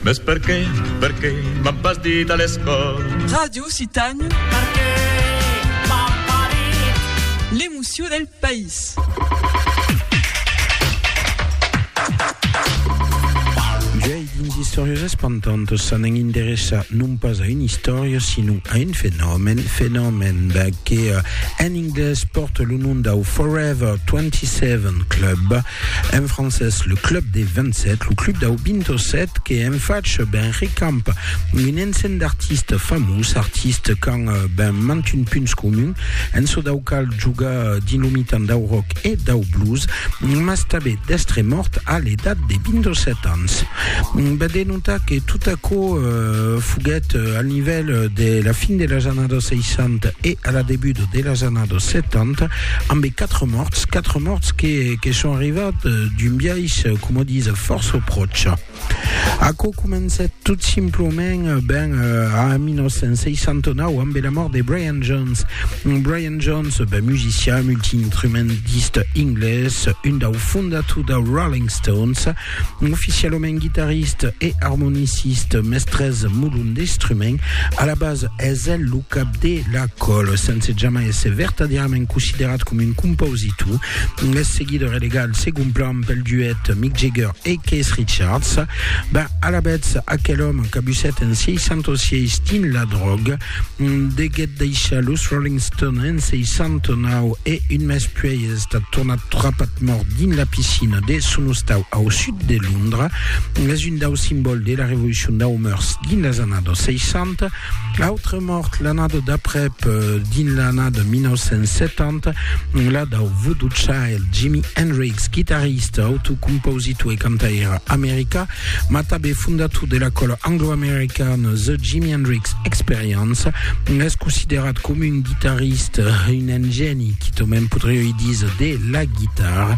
Mes perqué, perqué m'an pas dit a l'escòl. Ràdio Citanho. Perqué m'an pas dit. L'emocion del país. Uèi, dins Istòrias espantantas s'anèn interessar non pas a una istòria, sinon a un fenomèn, fenomèn que en anglés pòrta lo nom dau Forever 27 Club, En francés, le club des 27, lo club dau 27 que en fach ben recamp un ensenh d'artistes famós, artistes qu'an eh, ben mantun punts comun, en çò dau cal joga dins lo mitan dau rock e dau blues, mas tabé d'estre mòrt a l'edat de 27 ans. Ben de notar que tot aquò eh, foguèt al nivèl de la fin de las annadas 60 e a la debut de las annadas 70, Ambe quatre mòrts, quatre mòrts que, que son arrivats d'un biais, com o dise, fòrça pròche. Aquò comencèt tot simplement ben a 1969 ambe la mòrt de Brian Jones. Brian Jones, ben musician, multiinstrumentista inglés, un dau fondator dau Rolling Stones, Oficialament guitariste e armoniciste, mestres molon d'instrument, a la base es el lo cap de la col, sense jamai èsser vertadièrament considerat com un compositor. Es seguit relegat al segon plan pel duet Mick Jagger e Keith Richards. Ben, alavetz, aquel òme cabussèt en 66 dins la dròga, deguèt deishar los Rolling Stones en 69 e un mes puèi es estat tornat trapat mòrt dins la piscina de son ostau au sud de Londra. Es un dau simbòl de la revolucion dau murs dins las annadas 60. Autre mòrt l'annada d'aprèp, dins l'annada 1970, la dau Voodoo Child, Jimi Hendrix, guitarrista, autocompositor e cantaire americà, mas tanben fondator de la còla anglo-americana The Jimi Hendrix Experience, es considerat coma un guitarrista, un ingèni, qui tanben podrioi díser, de la guitarra.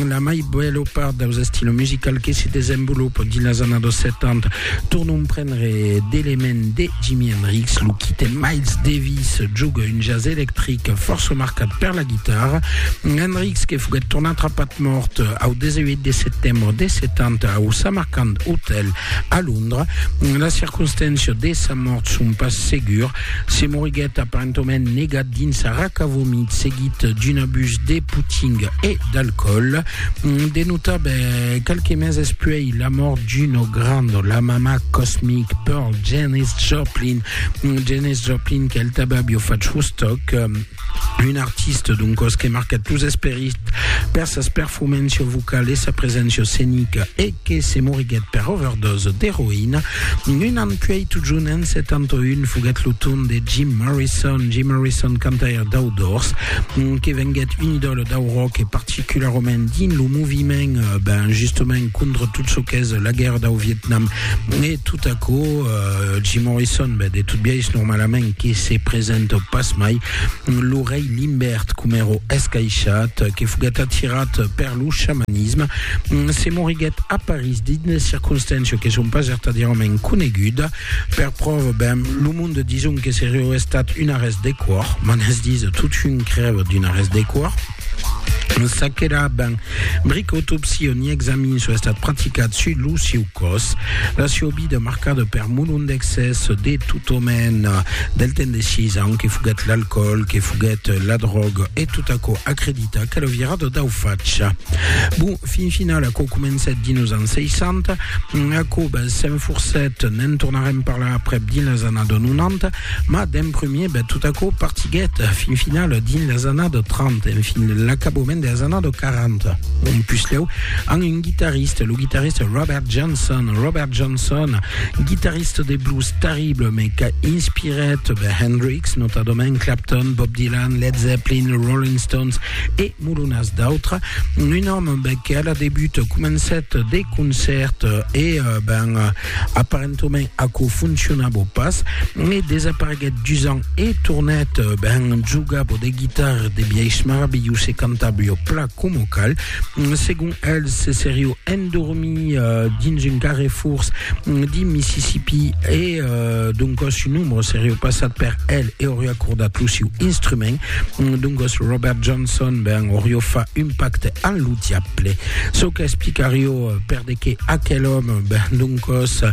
La mai bèla part daus estilos musicals que se desenvolopan dins las annadas 70 tornan genre d'element de Jimi Hendrix, lo quite Miles Davis joga un jazz electric fòrça marcat per la guitarra. Hendrix que foguèt tornat rapat mòrt au 18 de setembre de 70 au Samarkand Hotel a Londra. Las circonstàncias de sa mòrt son pas segur. Se moriguèt aparentament negat dins sa raca vomit seguit d'un abús de putting e d'alcoòl. De notar, ben, qualques meses puèi, Il a mòrt Gino Grando, la mamà Cosmic, Pearl, Janis Joplin, Janis Joplin qu'el taba bio fach Woodstock, un artista d'un cos que marca tous esperit per sas perfumencio vocal e sa presencia scenica e que se moriguèt per overdose d'eroïna un an puèi totjun en 71 foguèt lo torn de Jim Morrison, Jim Morrison cantaire dau Doors que venguèt un idòla dau rock e particularament dins lo moviment ben justement contra tot çò qu'es la guèrra dau Vietnam e tot aquò euh, Jim Morrison ben, de tot biais normalament que se presenta pas mai lo rei Limbert com èro escaishat que foguèt atirat per lo xamanisme se moriguèt a París dins de circonstàncias que son pas vertadièrament coneguda per pròva ben lo monde dison que serió estat un arrèst de còr m'an es disa tot un crèva d'un arrèst de còr Sa qu'èra ben bric autopsia ni examin soi estat practicat sus lo sieu còs. La sieu vida marcada per molon d'excès de tot òmen del temps de 6 ans que foguèt l'alcoòl, que foguèt la dròga e tot aquò acredita qu'èra virada dau fach. Bon, fin final aquò comencèt dins los ans 60, aquò s'enforcèt, ne'n tornarem parlar aprèp dins las annadas 90, Mas d'en premier ben tot aquò partiguèt fin final dins las annadas 30, en fin l'acabament de las annadas 40. Un puslèu amb un guitarrista, lo guitarrista Robert Johnson. Robert Johnson, guitarrista de blues terrible, mais qu'a inspirèt ben Hendrix, notadament Clapton, Bob Dylan, Led Zeppelin, Rolling Stones e molonas d'autres. Un òme ben, que a la debut comencèt de concèrts e ben, Aparentament aquò foncionabo pas e desapareguèt dus ans e tornèt ben jogabo de guitarra de biais maravilhós e cantabo jo pla coma cal segon el se serió endormir dins un carrefors di Mississippi e doncas su nombre serió passat per el e oriá cordat lo siu instrument doncas Robert Johnson ben orió fa un pacte amb lo diable çò qu'explicarió per de que aquel òme, ben doncòs,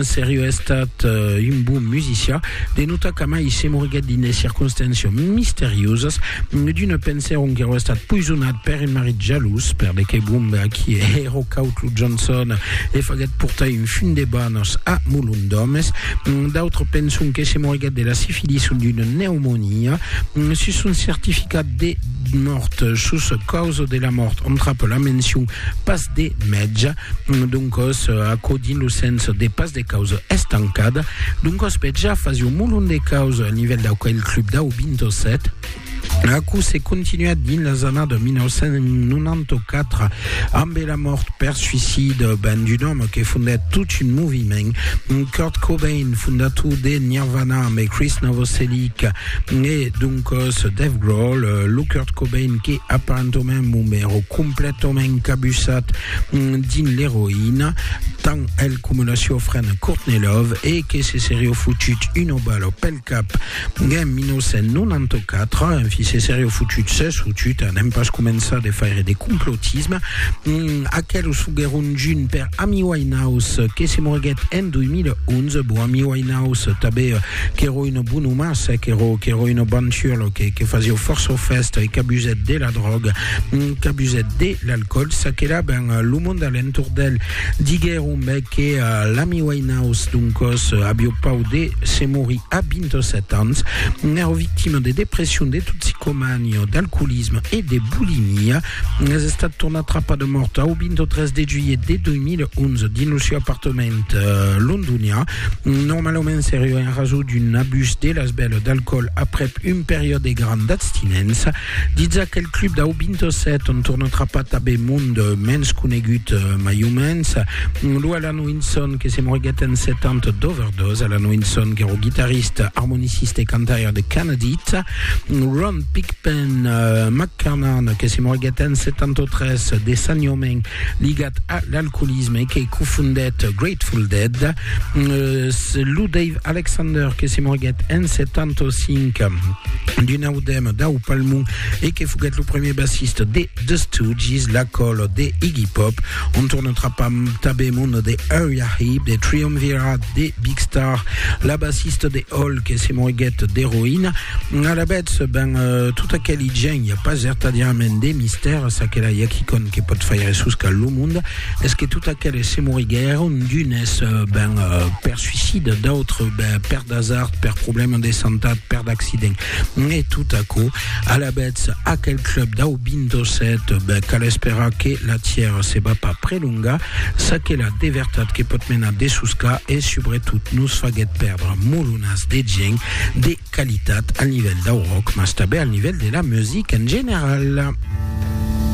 serió estat un bon musicià, de notar qu'amai se moriguèt dins de circonstàncias misteriosas, d'una pensèron qu'èro estat poisonat per un marit jalós, per de qué bon a qui èro caut lo Johnson e faguèt portar un fum de banhs a molon d'òmes, d'autres penson que se moriguèt de la sifilis o d'una pneumonia. Sus son certificat de mòrt, sus causa de la mòrt, on trap la mencion pas de mètge, doncòs aquò dins lo sens de pas de causa estancada, doncòs bèth ja fasi un molon de causa a nivèl d'aquel club dau 27, aquò se continuèt dins las annadas 1994 ambe la mòrt per suïcida ben d'un òme que fondèt tot un moviment, Kurt Cobain, fondator de Nirvana, ambe Chris Novoselic, Né doncos Dave Grohl, lo Kurt Cobain que aparentament mon mèro completament cabussat dins l'eroïna, tan el coma la siua frena Courtney Love e que se serió fotut una bala pel cap en 1994, enfin se serió fotut, s'es fotut, anem pas començar de faire de complotisme, aquelos foguèron junt per Amy Winehouse que se moriguèt en 2011, bon Amy Winehouse tanben Qu'èro un bon oma, se qu'èro, qu'èro un banturlo, que, que fasió fòrça fèsta e qu'abusèt de la dròga, qu'abusèt de l'alcòl, ça que la ben lo monde a l'entorn d'el. Diguèron me que l'ami Winehouse, doncòs, avió pau de se morir a 27 ans. N'èro victima de depression, de toxicomania, d'alcoolisme e de bulimia. Es estat tornat trapat de mòrt au 23 de juilhet de 2011 dins lo sieu apartament londonian. Normalament seriá en rasó d'un abús de l'esbèla d'alcoòl aprèp un periòd de gran d'abstinença, ditz aquel club dau 27 ont torna trapar tabé mond mens conegut mai o mens, lo Alan Winson que se moriguèt en 70 d'overdòs, Alan Winson qu'èra guitarista, armonicista e cantaire de Canadith, Ron Pigpen McCarnan que se moriguèt en 73 de sanhòment ligat a l'alcoolisme que cofondèt Grateful Dead, lo Dave Alexander que se morguèt en 75 d'un audèma dau palmon e que foguèt lo premier bassista de The Stooges, la còl de Iggy Pop, on torna trapar tanben mon de Uriah Heep, de Triumvirat, de Big Star, la bassista de Hole que se morguèt d'eroïna, alavetz ben tot aqueli gent I a pas vertadièrament de mistèr a ça que la Yacquicon que pòt faire suscar lo monde es que tot aqueles se moriguèron d'unes ben per suicide, d'autres ben per d'asard, per problèma de santat, per d'accident. E tot aquò, alavetz aquel club dau 27 ben cal esperar que la tièra se va pas prelongar, ça que la de vertat que pòt menar de suscar e subretot nos faguèt pèrdre molonas de gents, de Qualitat al nivèl dau rock, mas tanben al nivèl de la musica en general.